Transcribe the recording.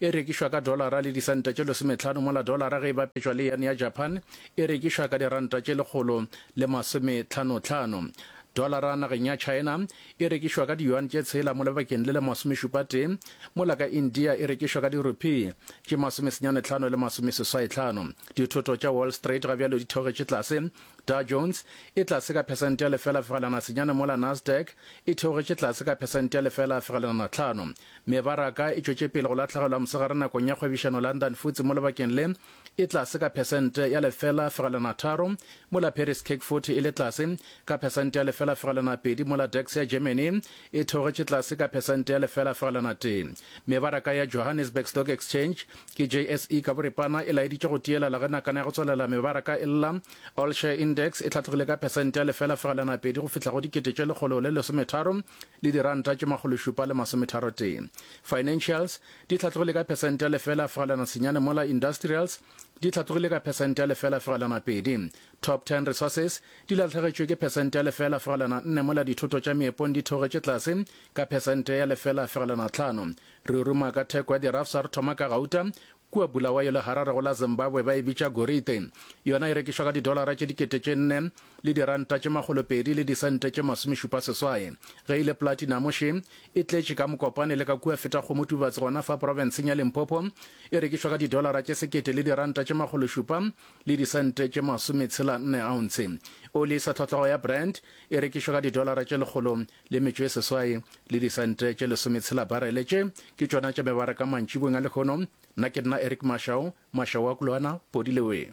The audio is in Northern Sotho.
E rekišwa ka dolara le disente tše lesometlhano mola dolara ge e bapetšwa le yen ya Japan e rekišwa ka diranta tše lekgolo le masometlhanotlhano. Dolara nageng ya China e rekišwa ka diyuan tše tshela mo lebakeng le le masomešupatee mola ka India e rekišwa ka dirupee tše masomesenyanetlhano le masomeseswaitlhano. Dithoto tša Wall Street ga bjalo di theogetše tlase. Dow Jones e tlase ka phesente ya lefela fegelwana senyane mola Nasdaq e theogetše tlase ka phesente ya lefela fegelwana tlhano. Mebaraka e tšwetše pele go lahlegelwa mosegare nakong ya kgwebišano London futsi mo lebakeng le e tlase ka phesente ya lefela fegelwana tharo, mola Paris CAC 40 e le tlase ka phesente ya lefela fegelwana pedi mola DAX ya Germany e theogetše tlase ka phesente ya lefela fegelwana tee. Mebaraka ya Johannesburg Stock Exchange ke JSE ka boripana e laeditše go tielala ge nakana ya go tswalela mebaraka e lla. All Share Index e hlatlogile ka phesente ya lefela fegelwana pedi go fihla go dikete tše lekgolo le lesometharo le diranta tše makgološupa le masometharotee. Financials di hlatlogile ka phesente ya lefela fegelwana senyane mola Industrials di hlatlogile ka phesente ya lefela fegelwana pedi. Top Ten Resources di latlhegetšwe ke phesente ya lefela fegelwana nne mola dithoto tša meepong di theogetše tlase ka phesente ya lefela fegelwana tlhano. Re ruma ka theko ya dirafsa re thoma ka gauta Kua Bulawayo le Harare go la Zimbabwe ba e bitša gorite. Yona e rekišwa ka didolara tše dikete tše nne le diranta tše makgolo pedi le disente tše masomešupa seswai. Ge e le platinamo še e tletše ka Mokopane le ka kua Fetagomotubatsi gona fa profenseng ya Limpopo e rekišwa ka didolara tše sekete le diranta tše makgolo šupa le disente tše masometshela nne ounce. Oli e sa tlhotlhago ya Brent e rekišwa ka didolara tše lekgolo le metšo e seswai, le disente tše lesometshela barele. Tše ke tšona tša mebaraka mantšibong a lehono. Nna ke nna Eric Mashau, Mashau wa Kulwana, Podi le wee.